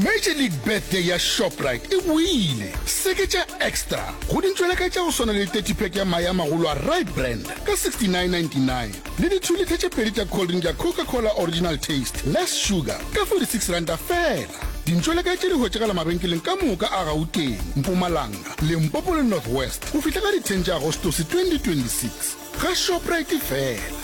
Major League Birthday ya Shoprite e boile! Seketša Extra go dintšweleka tša go swana le 30 pack ya mae a magolo a Rye Brand ka 69.99 le di 2 litha tše pedi tša cold drink ya Coca Cola Original Taste Less Sugar ka 46 ranta feela. Dintšweleka tše di hwetšagala mabenkeleng ka moka a Gauteng, Mpumalanga, Limpopo le North West go fihla ka di 10 tša Agostose 2026. Ga Shoprite fela!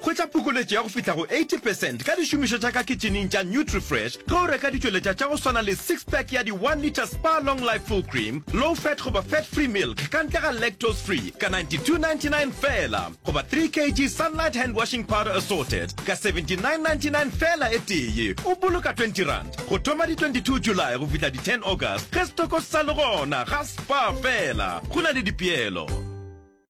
Hwetša phokoletšo ya go fihla go 80 percent ka dišomišo tša ka kitšhineng tša NutriFresh ge o reka ditšweletša tša go swana le six pack ya di one litre Spar Long Life Full Cream, Low Fat goba Fat Free Milk ka ntle ga Lactose Free ka 92.99 feela goba three kg Sunlight Hand Washing Powder Assorted ka 79.99 feela e tee. O boloka twenty rand go thoma di 22 July go fihla di ten August ge setoko se sa le gona. Ga Spar feela go na le dipeelo.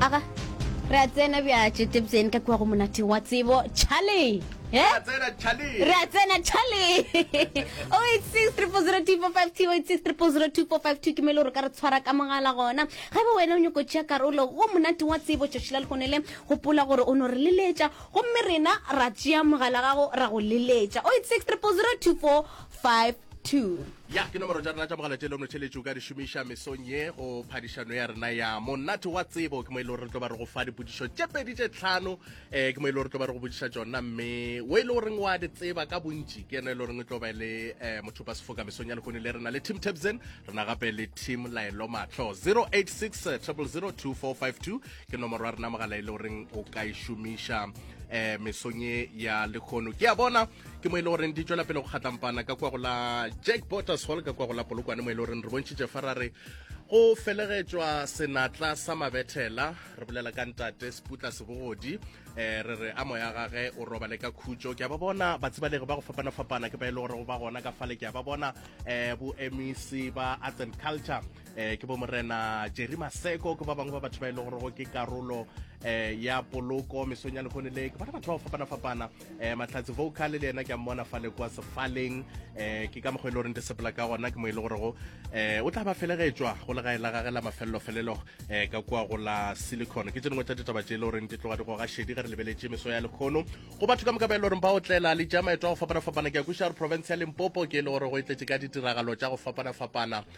aga re a tsena bja tšetebjeng ka kua go monate wa tsebo charlie Eh? Re a tsena Charlie. Re a tsena Charlie. 086300252086300245 ke mele gore ka re tshwara ka mogala gona. Ga ba wena o nyoko tšea karolo go monate wa tsebo tšoši la lekgone le gopola gore o no re leletša gomme rena ra tšea mogala gago ra go leletša 08630025 2 ya ke nomoro tša rena tša mogala tše le motheletši o ka di šomiša mesong ye go phadišano ya rena ya monate wa tsebo ke mo e le gore re tlo ba re go fa dipodišo tše pedi tše tlhano um eh, ke mo e le gore tlo ba re go bodiša tšona mme o e le goreng wa di tseba ka bontši ke yena e le goreng e tlo ba le um eh, motho ba sefoka mesong ya lekone le rena le team tabsen rena gape le team laelo matlho 086 002452 ke nomoro ya rena mogala e le goreng o ka e šomiša um mesong ye ya lekgono ke a bona ke mo e le goreng di tswela pele go kgatlampana ka kwa go la jack boters hall ka kwa go la polokwane mo e le goreng re bontšhitše fa ra re go felegetšwa senatla sa mabethela re bolela ka ntate seputla sebogodi um re re a moya gage o robale ka khutšo ke a ba bona batsibalegi ba go fapana-fapana ke ba e le gore go ba gona ka fale ke a ba bona um bo mec ba arts and culture eh ke bo morena jerry maseko ke ba bangwe ba batho ba e le gorego ke karolo eh ya poloko mesong ya lekgone le ke bona batho ba go fapana-fapana eh mahlatse vocal le yena ke a mmona fa le kwa sefaleng eh ke ka mokgwa e le goreng di sepela ka gona ke mo e le gorego eh o tla ba felegetšwa go legae la gage la mafelelo-felelo eh ka kwa go la silicon ke tse dingwe tsa ditaba tše e le goreng di tloga di goga šedi ge re lebeletše meso ya lekgono go batho ka moka ba e le goreng ba otlela le ja maeto a go fapana-fapana ke ya kušare province ya limpopo ke e le gore go e tletše ka ditiragalo tša go fapana-fapana